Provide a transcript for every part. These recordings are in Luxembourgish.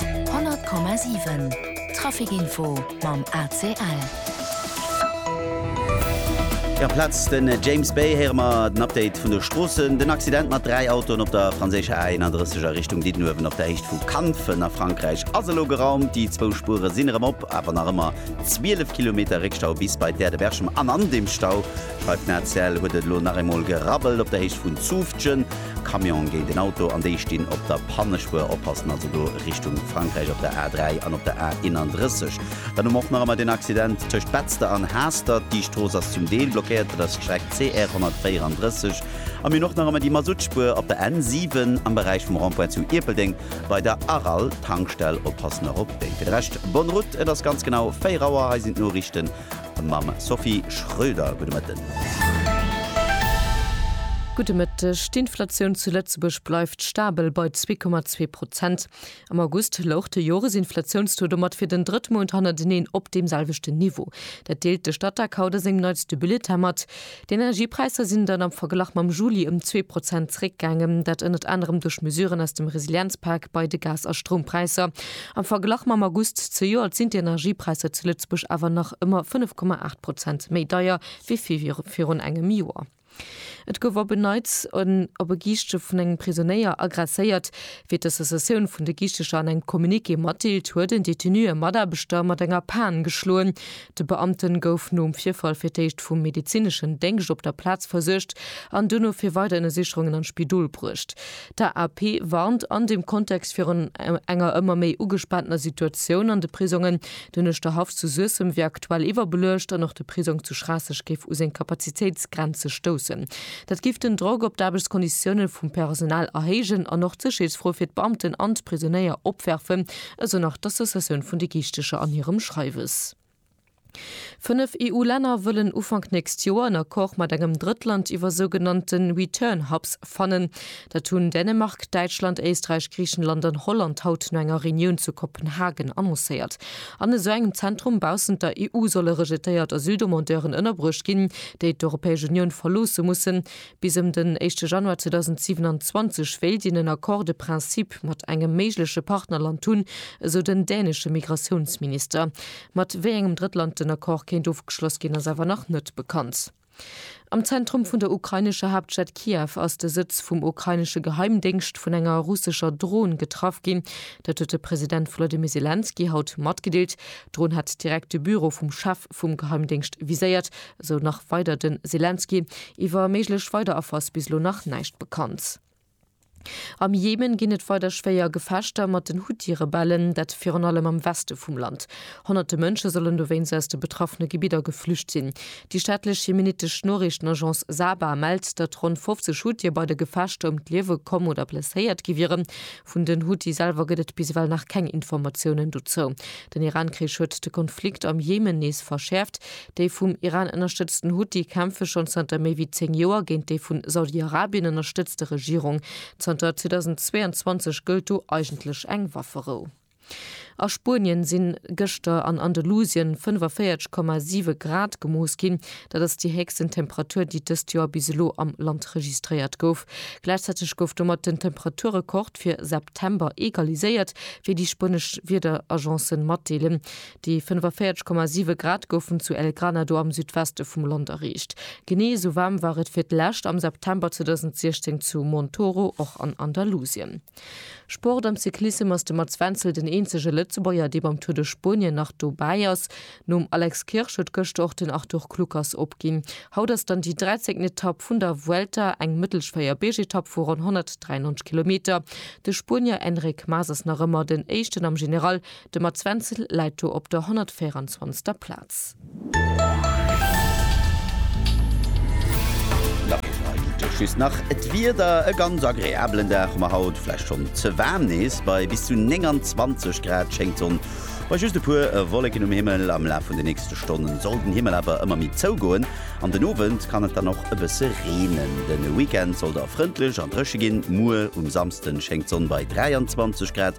100,7 Traficinfo mam ACL. Amplaz de James Bay héiere mer den Update vun de Stroossen. Den Accident mat dräi Autoen op der franséischer A 31 a Richtung Diddenuewen op der Héicht vu Kanfen a Frankräich ass elo geraumt. Déi zwou Spuere sinn erëm op, awer nach ëmmer 12 Kilometer Réckstau bis bei d'Aerde-Berchem. An an deem Stau, schreift den ACL, huet et elo nach eemol gerabbelt op der Héicht vun Zutphen. Camion géint een Auto an déi stinn op der Pannespuer. Oppassen also do Richtung Frankräich op der A3 an op der A31. Dann hu mer och nach ëmmer den Accident tëscht Betzder an Haastert. Déi Strooss ass zum Deel blockéiert, dat ass d'Streck CR 134. A mir hunn och nach ëmmer déi Masuttspuer op der N7 am Beräich vum Rond-point zu Ierpeldeng bei der Aral-Tankstell. Oppassen och op déi. Fir de Rescht, bonne route, et ass ganz genau 4 Auer. Hei sinn d'Noriichten. mam Sophie Schröder. Gudde Mëtten. Gudde Mëtteg. D'Inflatioun zu Lëtzebuerg bleift stabel bei 2,2 Prozent. Am August louch de Joresinflatiounstaux domat fir den drëtt Mount hannerteneen op deem selwechten Niveau. Dat deelt de Statec haut a sengem neitste Bulletin mat. D'Energiepräisser sinn dann am Verglach mam Juli ëm zwee Prozent zeréckgaangen, dat ënnert anerem duerch Mesuren aus dem Resilienzpak bei de Gas a Stroumpräisser. Am Verglach mam August zejoert sinn d'Energiepräisser zu Lëtzebuerg awer nach ëmmer 5,8 Prozent méi deier wéi virun engem Joer. Et gouf op en Neits en op e Giischte vun engem Prisonéier aggresséiert. Wéi d'Associatioun vun de Giichtecher an engem Communiqué matdeelt, huet en Detenu e Mataarbechter mat enger Pan geschloen. De Beamte gouf nom Virfall fir d'éischt vum medezineschen Déngscht op der Plaz versuergt an duerno fir weider Ënnersicherungen an d'Spidol bruecht. D'AAP warnt an dem Kontext virun enger ëmmer méi ugespaantener Situatioun an de Prisongen. Den Uerschterhaff zu Suessem wier aktuell iwwerbeluecht an och de Prisong zu Schraasseg géif u seng Kapazitéitsgrenze stoussen. Dat géif den Drock op d'Aarbechtskonditioune vum Personal erhéijen an och d'Sécherheetsfro fir d'Beamten an d'Prisonéier opwerfen, esou nach d'Associatioun vun de Giichtecher an hirem Schreiwes. Fënnef EU-Länner wëllen Ufank nächst Joer en Accord mat engem Drëttland iwwer sougenannte Return Hubs fannen. Dat hunn Dänemark, Däitschland, Éisträich, Griichenland an Holland haut no enger Reunioun zu Kopenhagen annoncéiert. An esou engem Zentrum baussent der EU solle rejetéiert Asyldemandeuren ënnerbruecht ginn, déi d'Europäesch Unioun verloosse mussen, Bis ëm den éischte Januar 2027 wéilt een en Accord de principe mat engem méigleche Partnerland hunn, esou den dänesche Migratiounsminister. Mat wéi engem Drëttland den Accord kéint ofgeschloss ginn, ass awer nach net bekannt. Am Zentrum vun der ukrainescher Haaptstad Kiew ass de Sëtz vum ukrainesche Geheimdéngscht vun enger russescher Dron getraff ginn. Dat huet de President Volodymyr Selenskyj haut matgedeelt. D'Dron hat direkt de Büro vum Chef vum Geheimdéngscht viséiert, esou nach weider de Selenskyj. Iwwer méiglech weider Affer ass bis elo nach näischt bekannt. Am Jemen ginn et weider schwéier Gefechter mat den Huthi-Rebellen, dat virun allem am Weste vum Land. Honnerte Mënsche sollen dowéinst aus de betraffene Gebidder geflücht sinn. Déi staatlech jemenittesch Noriichtenagence Saba mellt, datt ronn 50 Huthier bei de Gefechter ëm d'Liewe komm oder blesséiert gi wieren, Vun den Huthi selwer gëtt et bis ewell nach keng Informatiounen dozou. Den Iran-Krich huet de Konflikt am Jemen nees verschäerft. Déi vum Iran ënnerstëtzten Huthi kämpfe schonn zanter méi wéi 10 Joer géint déi vu Saudi-Arabien ënnerstëtzte Regierung. Zanter 2022 gëllt do eigentlech eng Wafferou. A Spuenien sinn gëschter an Andalusien 45,7 Grad gemooss ginn. Dat ass déi héchsten Temperatur, déi dëst Joer bis elo am Land registréiert gouf. Gläichzäiteg gouf domat den Temperaturrekord fir September egaliséiert, wéi déi spuenesch Wiederagence matdeelen. Déi 45,7 Grad goufen zu El Granado am Südweste vum Land erreecht. Genee esou waarm war et fir d'lescht am September 2016 zu Montoro, och an Andalusien. Sport am Cyclissem ass de Mats Wenzel den eenzege Lëtzebuerger, dee beim Tour de Spuenien nach dobäi ass. Nom Alex Kirsch huet gëschter och den Arthur Kluckers opginn. Haut ass dann déi 13. Etapp vun der Vuelta, eng mëttelsch Véierbeergetapp vu ronn 193 Kilometer. De Spuenier Enric Mas ass nach ëmmer den Éischten am General. De Mats Wenzel läit do op der 124. Plaz. Just nach d'Wieder, e ganz agreabelen Dag, ma haut vläicht schonn ze waarm, nees bei bis zu 29 Grad schéngt d'Sonn, bei just e puer Wolleken um Himmel. Am Laf vun de nächste Stonnen soll den Himmel awer ëmmer méi zougoen, an den Owend kann et dann och e bësse reenen. De Weekend soll da frëndlech a dréche ginn, muer um Samsden schéngt d'Sonn bei 23 Grad.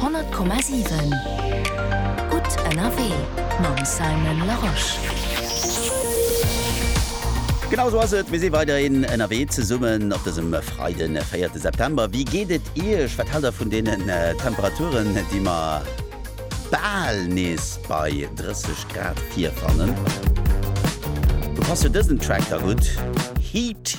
Honnert Komma siwen, gutt ënnerwee mam Simon Larosche. Genau esou ass et, mir si weiderhin ënnerwee zesummen op dësem Freiden, de véierte September. Wéi geet et Iech? Wat haalt Der vun deenen Temperaturen, déi mer bal nees bei 30 Grad virfannen? Do passt jo dësen Track da gutt, Heat.